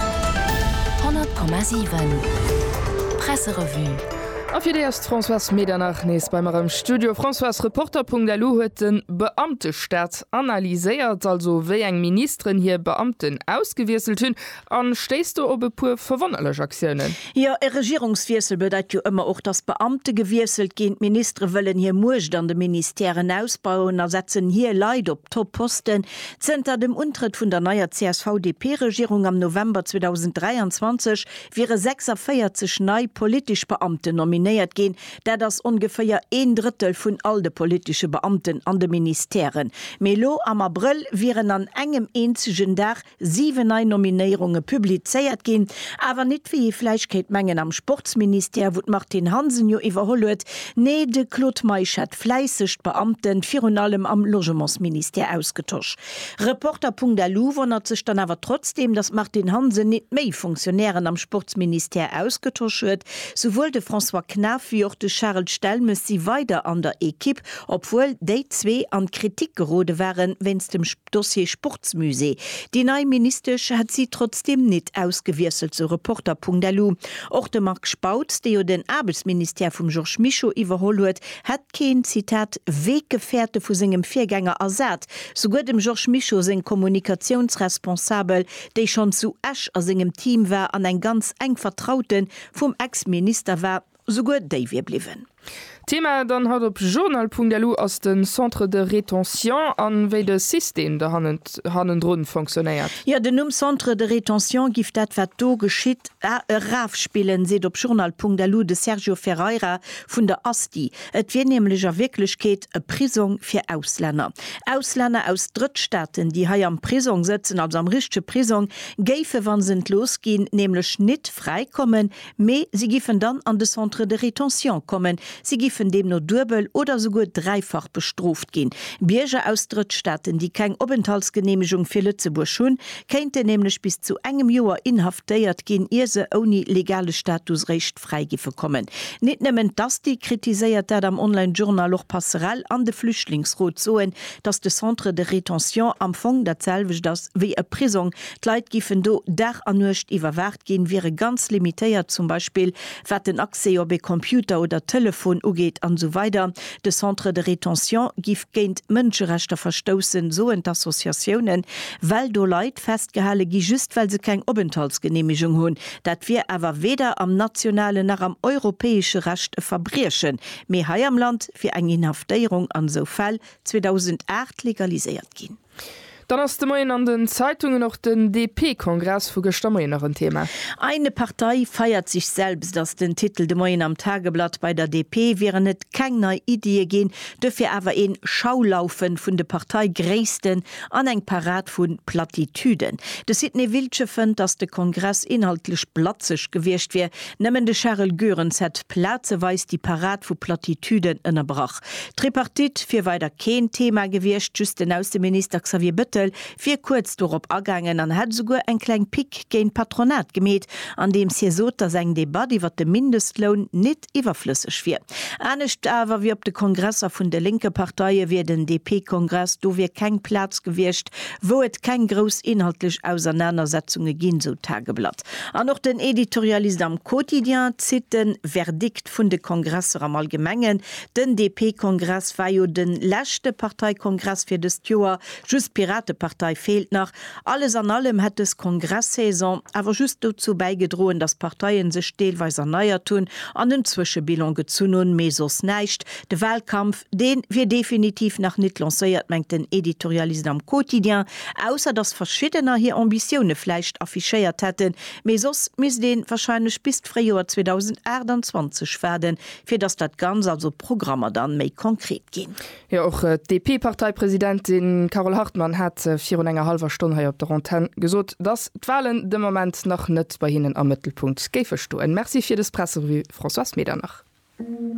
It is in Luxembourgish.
100,7 Presserevue. A fir déi ass d'Françoise Medernach nees bei mer am Studio. Françoise, Reporter.lu huet de Beamtestaat analyséiert, also wéi eng Ministeren hir Beamten ausgewiesselt hunn. A stéisst do op e puer verwonnerlech Aktiounen? Jo, e Regierungswiessel bedeit jo ëmmer och, datt Beamte gewiesselt ginn. D'Ministere wëllen hir Muecht an de Ministèren ausbauen a setzen hir Leit op Top-Posten. Zënter dem Untrëtt vun der neier CSV-DP-Regierung am November 2023 wiere 46 nei politesch Beamten nominéiert ginn. Dat ass ongeféier een Drëttel vun all de politesche Beamten an de Ministèren. Mee elo am Abrëll wieren an engem eenzegen Dag siwen nei Nominéierunge publizéiert ginn. Awer nit, wéi ee vläicht kéint mengen, am Sportsministère, wou d'Martine Hansen jo iwwerholl huet. Nee, de Claude Meisch hat. fläisseg d'Beamten, virun allem am Logementsministère, ausgetosch. Reporter.lu wonnert sech dann awer trotzdem, datt d'Martine Hansen nit méi Fonctionnairen am Sportsministère ausgetosch huet. Souwuel de François Knaff wéi och de Charel Stelmes si weider an der Equipe, obwuel déi zwee an d'Kritik gerode waren wéinst dem. Dossier Sportsmusée, Déi nei Ministesch hätt si trotzdeem nit ausgewiesselt, sou Reporter.lu. Och de Marc Spautz, dee jo den Aarbechtsministère vum Georges Mischo iwwerholl huet, hätt keen, Zitat, Weggefährte vu sengem Virgänger ersat. Souguer dem Georges Mischo seng Kommunikatiounsresponsabel, déi schonn zu Esch a sengem Team war an eng ganz enk Vertraute vum Ex-Minister war, Souguer déi wier bliwwen. Thema dann haut op journal.lu ass de Centre de rétention an wéi de System do hannendrun fonctionnéiert. Jo, den Numm Centre de rétention giff dat wat do geschitt erafspillen, seet op journal.lu de Sergio Ferreira vun der Asti. Et wier nämlech a Wierklechkeet e Prisong fir Auslänner. Auslänner aus Drëttstaaten, déi hei am Prisong sëtzen, also am richtege Prisong, géife wann se entlooss ginn, nämlech nit fräi kommen, Mee si giffen dann an de Centre de rétention kommen. Si giffen deemno duebel oder souguer dräifach bestrooft ginn. Bierger aus Drëttstaaten, déi keng Openthaltsgeneemegung fir Lëtzebuerg hunn, kéinten nämlech bis zu engem Joer inhaftéiert ginn, ier se ouni legale Status réischt fräi giffe kommen. Nit nëmmen d'ASTI kritiséiert dat am Online Journal, och Passerell an de Flüchtlingsrot soen, datt de Centre de rétention am Fong dat selwecht ass wéi e Prisong, D'Leit giffen do Dag a Nuecht iwwerwaacht ginn, wiere ganz limitéiert, zum Beispill wat den Accès op ee Computer oder Telefon ugeet an esou weider De Centre de rétention giff géint d'Mënscherechter verstoussen, soen d'Associatiounen, well do Leit festgehale gi just well se keng Openthaltsgeneemegung hunn. Dat wier awer weder am nationalen nach am europäesche Recht e Verbriechen, mee hei am Land wier eng Inhaftéierung an esou Fäll 2008 legaliséiert ginn. Dann ass de Moien an den Zeitungen och den DP-Kongress vu gëschter Moien nach en Thema. Eine Partei feiert sich selbst ass den Titel de Moien am Tageblatt. Bei der DP wieren et keng nei Iddie ginn, duerfir awer een Schaulaufe vun de Parteigréissten an eng Parad vu Plattitüden. De Sidney Wiltgen fënnt, datt de Kongress inhaltlech blatzeg gewiescht wier. Nëmmen de Charel Goerens hätt plazeweis déi Parad vu Plattitüden ënnerbrach. D'Tripartite wier weider keen Thema gewiescht, just den Ausseminister Xavier Bettel wier kuerz dorop agaangen an hätt esouguer eng kleng Pick géint d'Patronat gemeet, andeems hie sot, datt eng Debatt iwwer de Mindestloun nit iwwerflësseg wier. Anescht awer wéi op de Kongresser vun de lénke Parteie wier den DP-Kongress dofir keng Plaz gewiescht, wou et keng grouss inhaltlech Ausernanersetzunge ginn, sou d'Tageblatt. An och den Editorialist am Quotidien zitt de Verdikt vun de Kongresser am Allgemengen, Den DP-Kongress war jo de leschte Parteikongress fir dëst Joer, just d'Piratepartei feelt nach. Alles an allem hätt dës Kongress-Saison awer just dozou bäigedroen, datt d'Parteie sech deelweis erneiert hunn an en Zwëschebilan gezunn hunn, mee soss näischt. De Wahlkampf, dee wier definitiv nach nit lancéiert, mengt den Editorialist am Quotidien, ausser datt Verschiddener hir Ambitioune vläicht affichéiert hätten, mee soss misst ee warscheinlech bis d'Fréijoer 2028 waarden, fir datt dat Ganz, also d'Programmer dann méi konkret ginn. Jo, och d'DP-Parteipresidentin Carole Hartmann hat virun enger hallwer Stonn hei op der Antenn gesot, datt d'Walen de Moment nach net bei hinnen am Mëttelpunkt géife stoen. Merci fir dës Presserevue, Françoise Medernach.